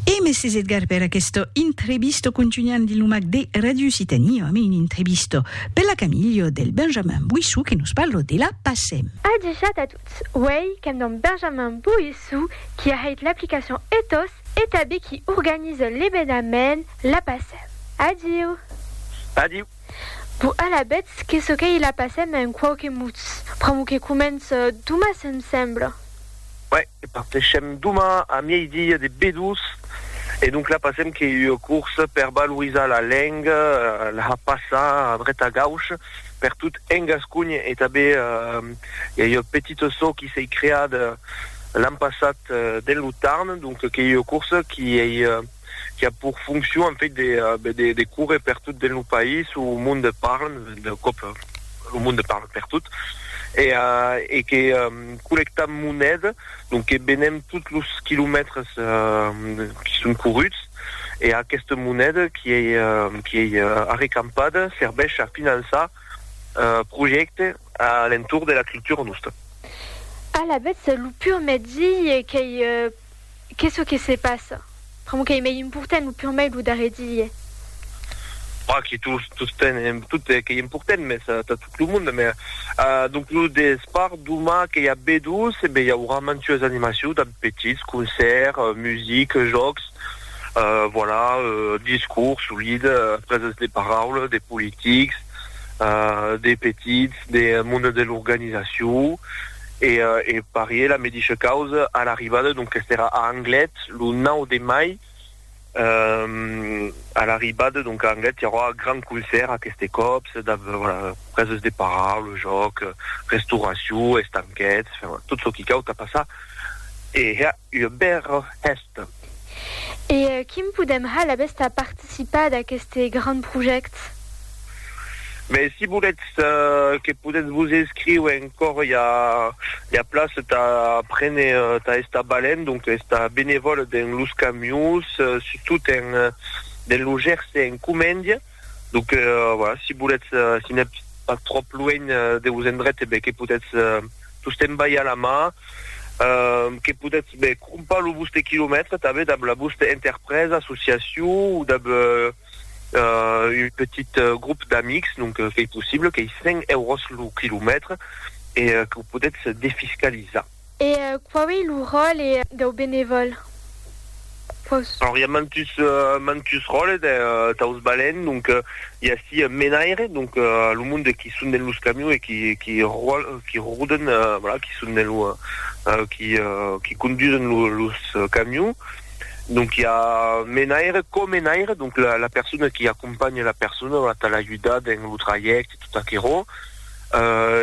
E mèsi Edgar per aquesta entrevista contunham dins lo mac de Radio Occitanie amb una entrevista per la Camilho del Benjamin Boissou que nos parla de la PACEM. Adishat a tots, uèi qu'èm damb Benjamin Boissou qui a hèit l'aplicacion Ethos e tabé qui organiza l'evenament la PACEM. Adiu! Adiu! Bo alabetz que çò qu'ei la passèm en quauque mots. Pr'amor que comença doma se'm sembla. Uèi, parteishem doma a miei-dia de B2 e donc la passèm qu'ei ua corsa per valorizar la lenga, la passar a dret a gauch per tot en Gasconha e tanben i a ua petita çò qui s'ei creada l'an passat dens lo Tarn, donc qu'ei ua corsa qui ei. qui a pour fonction en fait de, euh, ben, de, de courir per tot dins lo país où le monde parle, de cop euh, le monde parle per tot, et, euh, et que euh, collectam moneda, donc que benem tots los quilomètres euh, qui sont courruts, et aquesta moneda qui est, euh, qui est euh, arrecampada serveix a finançar euh, projectes à l'entour de la culture nostra. Alavetz, lo pur mètzi qu'ei euh, Qu'es çò que se passa? Pr'amor qu'ei mei important lo pur mei lo darrer dilhe. Pas que tus tosten en tot qu'ei important, mes tà tot lo monde, mes donc lo despart doma qu'ei a B12 e ben i aurà mantues animacious damb petits, concèrt, music, jòcs, voilà, discours solid, presas de paraula, de politics, de petits, de monde de l'organizacion. E e parié la medisha causa a l'arribada, donc qu'est era a Anglet lo 9 de mai, e a l'arribada donc a Anglet i aurà gran concèrt aqueste còp, se dab voilà preses de paraula, jòc, restauracion, estanquets, enfin tot çò qui cau tà passar e hèr ua bèra hèsta. E quim podem ha la besta participar d'aqueste grand project? Be, si voletz que podetz vos escriure encor i a la place tà prene tà estar balent, donc estar benevòl dens los camions, surtout dens lo Gerse en Comèndia. Donc, euh, voilà, si voletz, euh, si n'êtes pas trop loin euh, de vos endrets, eh ben, que potètz euh, tostemps balhar la mà, euh, que potètz ben, crompar lo vostre quilomètre també dab la vostra interpresa, associacion ou dab euh, euh, un petit euh, groupe d'amics, donc euh, qu'ei possible, qu'ei 100 euros lo quilomètre e euh, que potètz defiscalizar. E quau ei lo ròle dau benevòl? Quaus. Alors i a mantus mantus ròles daus balèns, donc i a ací un menaire, donc lo monde qui son dens los camions e qui qui qui roden, voilà, qui son dens lo qui qui condusen lo los camions, donc i a menaire, co-menaire, donc la la persona qui acompanha la persona, voilà, tà l'ajudar dens lo trajècte e tot aquerò.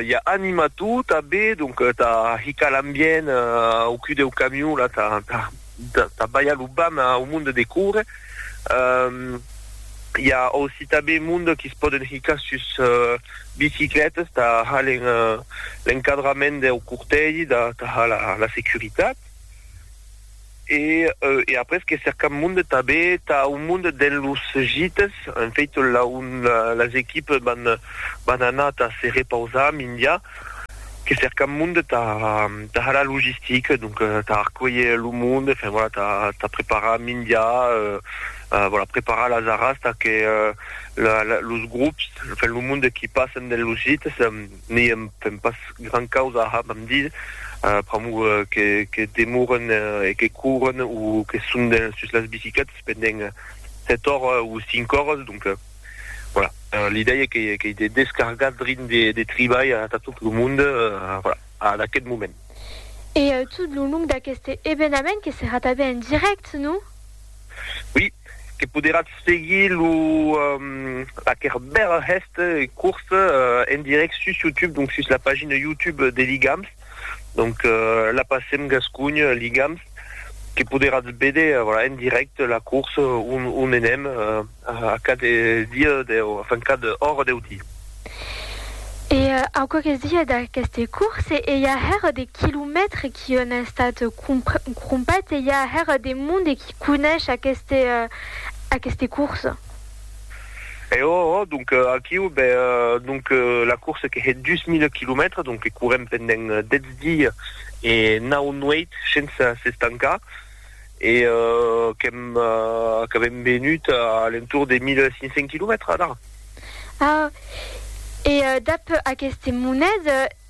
ja anima tot a be donc ta hica l'ambient au cul deu camion la ta ta ta balha lo bam au monde de córrer ja aussi ta be monde qui se poden hicar sus bicicletas ta ha l'encadrament deu cortègi ta ha la securitat E e après que cercam monde tabé tà un monde dens los gites, en fait là on las equipes van van anar tà se repausar mindia que cercam monde tà tà har la logistique donc tà arcuelher lo monde enfin voilà tà tà preparar mindia euh voilà preparar las arras tà que la la los grops enfin lo monde qui passen dens los gites N'i èm pas gran causa a hab amb Dieu, pr'amor que demoren e que couren o que son sus las bicicletas pendent sèt oras o cinc oras, donc voilà, l'idèia qu'ei de descargar drin de tribalh atà tot lo mond, voilà, ad aquest moment. E tot lo long d'aqueste evenament que serà tanben en dirèct, non? Oui, que poderatz seguir lo aquer bèl hèst curs en direct sus YouTube, donc sus la pagina YouTube de Ligams, donc la passem Gascunh Ligams, que poderatz béder en direct la curs on enèm. A cada dia deu, enfin cada ora deu di. E au quauques dies d'aqueste course, ei a hèr de quilomètres qui on a estat crompèt, ei a hèr de monde qui conesh aqueste aqueste course. E oh oh, donc aquiu, be donc la course que hè dus mile quilomètres, donc que courem pendent dètz dies e nau nuèit shensa s'estancar. e qu'èm qu'avèm venut a l'entorn de 1.500 quilomètres d'ara. Ah! E dab aqueste monet,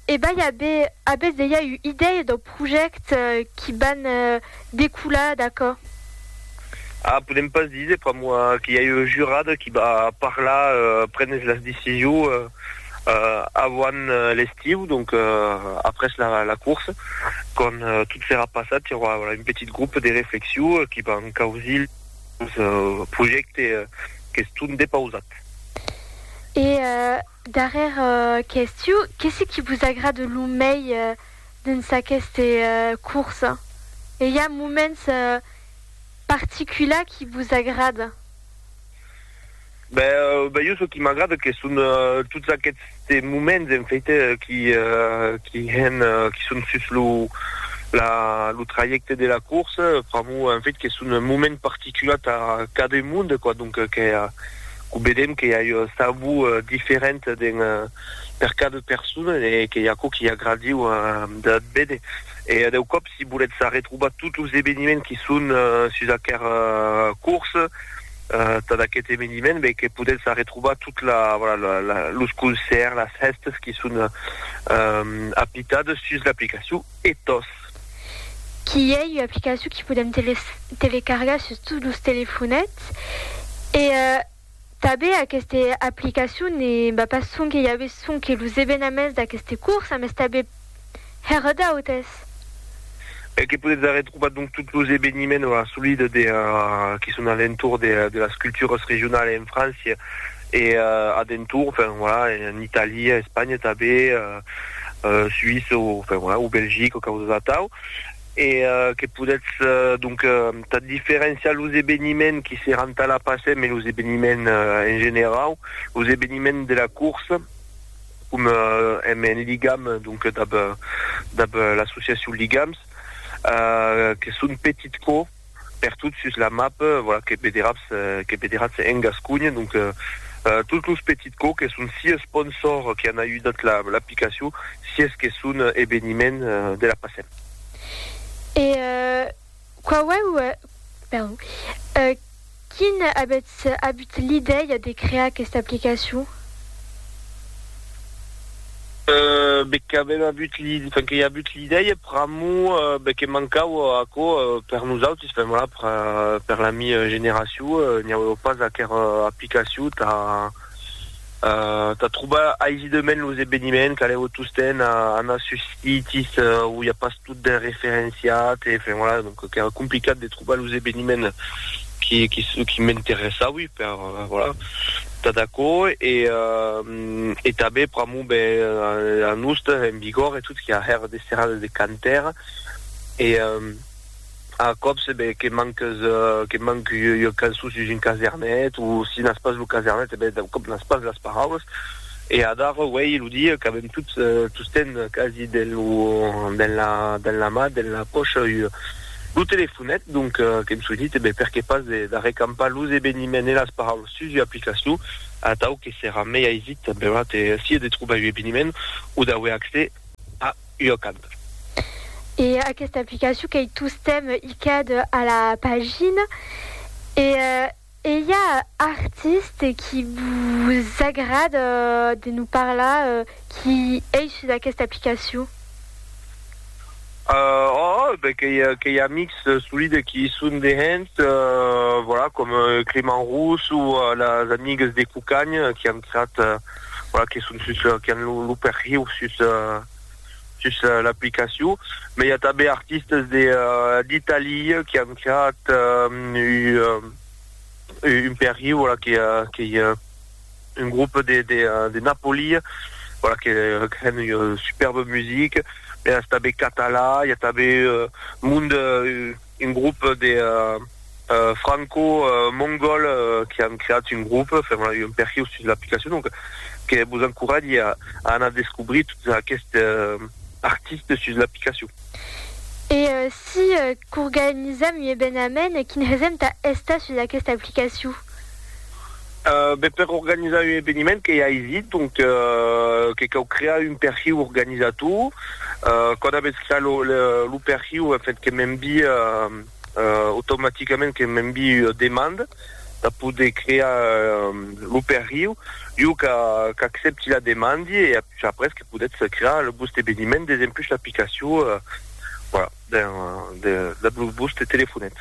ebai abe, abètz dejà ua idèia dau projèct qui van decolar d'aquò? Ah, podèm pas díser, pr'amor que i a ua jurada qui va parlar, prenes las decisions. Avant l'estiu, donc après la course, quand tot serà passat, i aurà un petit groupe de reflexion qui van causir los projèctes qu'estón depausats. E darrèr qu'estiu, qu'es ce qui vos agrade lo mei dens aqueste course? E i a moments particulars qui vos agrada? Ben jo çò qui m'agrada que son tots aquests moments en faite qui qui hèn qui son sus lo la lo trajècte de la corsa pr'amor en fait que son un moment particular tà cada monde quoi donc que que vedèm que i a un sabor diferent den per cada persona e que i a aquò qui agradiu de véder e deu còp si volètz arretrobar tots los eveniments qui son sus aquera corsa Tad aquest eveniment ben que podètz arretrobar tot la voilà la los concèrts, las hèstes qui son apitades sus l'aplicacion Ethos. Qui ei ua aplicacion qui podèm telecargar sus tots los telefonets e tanben aquesta aplicacion ne va pas sonque i a ve sonque los evenaments d'aqueste curs, mas tanben Hèr d'autes. E que podetz arren trobar donc tots los eveniments o assolida de qui son a l'entorn de de las culturas regionalas en França e a d'entorn, enfin voilà, en Itàlia, Espanha tanben, Suïssa o enfin voilà, o Belgica o causas atau. E que podetz donc tà diferenciar los eveniments qui seràn tà la PACEM e los eveniments en generau, los eveniments de la corsa. com èm en ligam donc dab dab l'associacion Ligams que son petit co pertot sus la map voilà que vederatz que vederatz en Gasconha donc tots los petit co que son si sponsor que an ajudat la l'aplicacion si es que son eveniment de la passem. E Quauèu, perdon, quin avètz abut l'idèia de crear aquesta aplicacion? Be qu'avèm abut l'idèia, enfin, que i abut l'idèia pr'amor, be que mancau aquò per nosautis, enfin, voilà, per, per la mi generacion, n'i auèu pas aquera aplicacion tà, Tà trobar aisidament los eveniments, calèu tostemp anar sus sites où i a pas tot ben referenciat, enfin voilà, donc qu'èra complicat de trobar los eveniments qui m'interessaui per, voilà, tà d'aquò e tanben pr'amor ben a nos, en Bigòrre e tot, qu'i a hèr de serrades de cantèr e A còps, ben, que manques, que manc ua cançon sus un casernet, o si n'as pas lo casernet, e ben, d'un còp n'as pas las paraulas. E adara, uèi, lo dia qu'avèm tots, tostemp quasi, dens lo, dens la, dens la man, dens la pòcha, ua, lo telefonet, donc, qu'èm soinit, e ben, perqué pas de, d'arrecampar los eveniments e las paraulas sus ua aplicacion, atau que serà mei aisit, benlèu, de, sia de trobar un eveniment, o d'auer accès a. ua canta. E aquesta aplicacion qu'ei tostemp icad a la pagina. E ei a artiste qui vos agrada de nos parlar qui ei sus aquesta aplicacion? Òòh, ben qu'ei amics solide qui i son dehens, voilà, com Clément Rousse o las amigues de Cucagn qui an creat voilà, que son sus, que an lo, lo perhiu sus, sus l'aplicacion. Mai i a tanben artistes de, d'Italia que an creat un, un perhiu, voilà, que, que i a un groupe de, de, de Napoli, voilà, que, que an un superbe musique. Mai a tanben catalan, i a tanben monde, Un grop de franco-mongòl que an creat un grop, fèm la un perhiu sus l'aplicacion, donc que vos encoratge a anar descobrir tots aqueste artistes sus l'aplicacion. E si qu'organizam ua ebenament, quin hesem tà estar sus aquesta aplicacion? Ben per organizar un eveniment que i a aisit, donc que cau crear un perhiu organizator. Quand avètz creat lo lo perhiu en fait que m'envie automaticament que m'envie ua demanda per poder crear lo perhiu. Jo ca qu'accepti la demandi e après que podètz crear lo vòste eveniment desempus l'aplicacion. Voilà. Ben, de la Bluebus te telefonèt.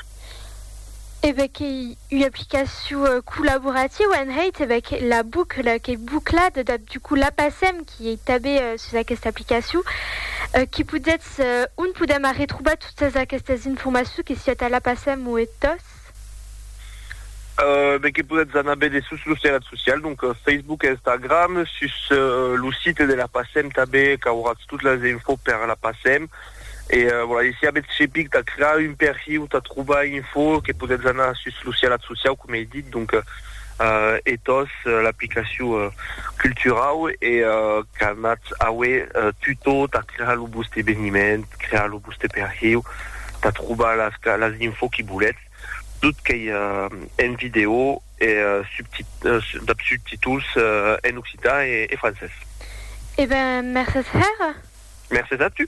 E ben qu'ei ua aplicacion collaborativa en hèit, e ben que la bucla qu'ei buclada, dab du coup la passèm, qui ei tanben sus aquesta aplicacion, qui podetz, on podèm arretrobar totas aquestas informacions, que siá tà la passèm o e tòs. socials. Be que podètz anar béder sus los terrets socials, donc Facebook e Instagram, sus lo site de la PACEM tanben qu'auratz tot las infos per la PACEM e voilà, e si avètz chepic tà crear un perhiu tà trobar info que podètz anar sus los terrets socials coma ei dit, donc Ethos, l'aplicacion culturau e qu'anatz aué tutor tà crear lo vòste eveniment, crear lo vòste. Ste per hieu ta trobar las las info qui boletz tot qu'ei en vidéo e dab subtituls en occitan e francés. E ben mercés hèra. Mercés a tu.